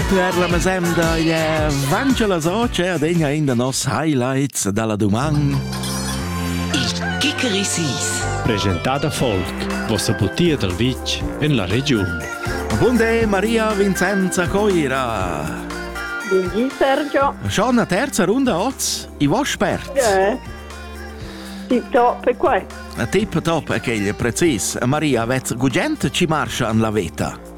Per la mesemda è vange la soce ad egna in da nos highlights dalla duman. Il Kikerisis. Presentada folk, vossa butia dal vitg en la regiun. Bunde Maria Vincenza Coira. Buongiorno Sergio. Schon la terza runda oz? I vuoi spert? Eh. Tip top è qua. Tip top è che precis. Maria, vez gugent ci marscia an la veta?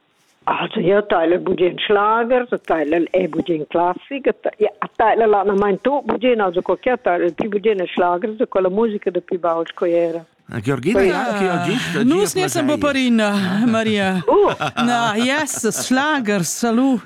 Also ia taila bugen schlager, a taila è bugen classic, a taila l'anamaint tut bugen, also co chia taila il pü bugen è schlagers da quella musica da pü baul sco era. Georgina, ja, che ho gist Nus ne sem paparina, Maria. Uh. Na, yes, schlagers, salut.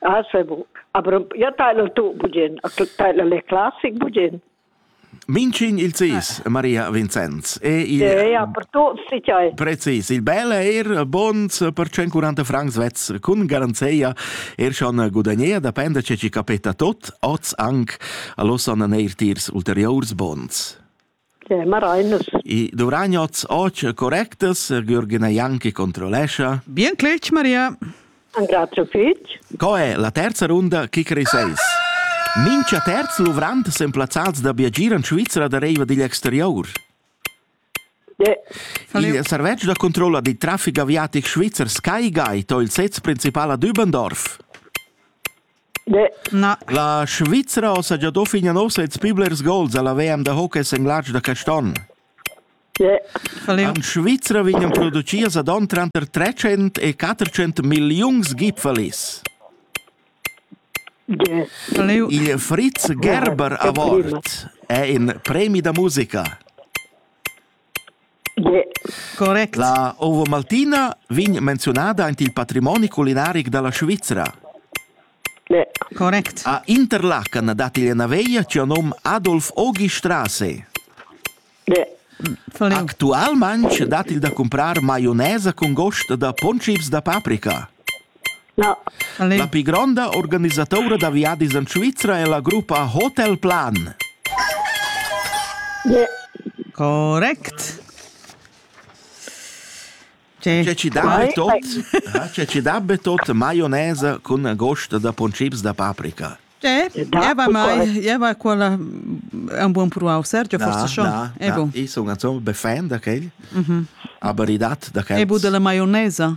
Ah, sei bu. Aber ja tailer tu bugen, a tailer le classic bugen. Mincin il cis, Maria Vincenz. E il... Eh, ja, per tutti si c'è. Precis, il bel er bons per 140 francs vez con garanzia er schon gudagnea, depende ce ci capita tot, oz anc allosan neir tiers ulteriors bons. che marainas. I duvragnots och correctas, Gürgina Janki controlescha. Bien clec, Maria. Grazie fitch. Co è la terza runda Kickery 6? Mincha terz luvrant sen plazzals da biagir in Svizra da reiva digl exterior. Yeah. Il servetsch da controlla di traffic aviatic svizzer Sky Guide o il sez principal a Dübendorf. La Svizra saja da fin nov sezs pli blers gols alla WM da hockey en Latsch da Caston. En Svizra vegnan producias ad on tranter 300 e 400 milliuns gipfelis. Il Fritz Gerber Award è in premi da musica. Correct. La Ovo Maltina vegn menzionada aint il patrimoni culinaric da la Svizra. Correct. A Interlaken dat igl ena veia tg'ia nom Adolf Ogi Strasse. Actualmaintg dat il da cumprar maionesa cun gost da pontchips da paprika. La pli gronda organisatura da viadis en Svizra è la gruppa Hotel Plan. Correct. C'è ci dabbe tot, c'è ci dabbe tot maionese con gost da poncips da paprika. C'è, jeva mai, jeva quella è un buon pruau, Sergio forse schon. Ebo. Ich sono insomma befan da quel, aber i dat da quel. Ebo della maionesa.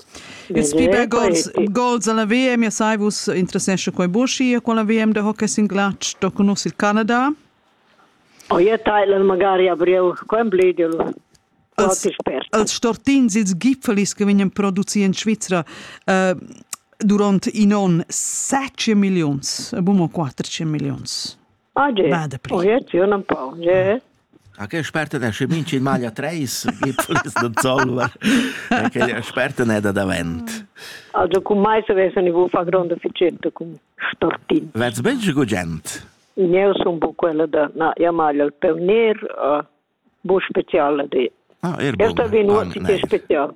Ils pli bels gols, gols alla VM, ja sai vus interessescha quei buca con la VM de hockey sin glatsch, do conosci il Canada? O je Thailand magari abriu Wembley dilu. Als stortins, ils gipfelis che vegnan produci in Svizzera uh, durant in onn 7 millions, a bumo 4 millions. Ah, ge. Ma dapri. Oh, ja, ti un empau. Ja. Ok, sperta da sche minci in maglia 3, gipfel ist non solver. Perché sperta ne da davent. Also con mai se vesano i bufa grande ficetto con stortin. Vets bengi gugent? Io sono un po' quella da, na, io maglia il peo nero, uh, bu speciale di. Ah, er bun. Esta vino, si che speciale.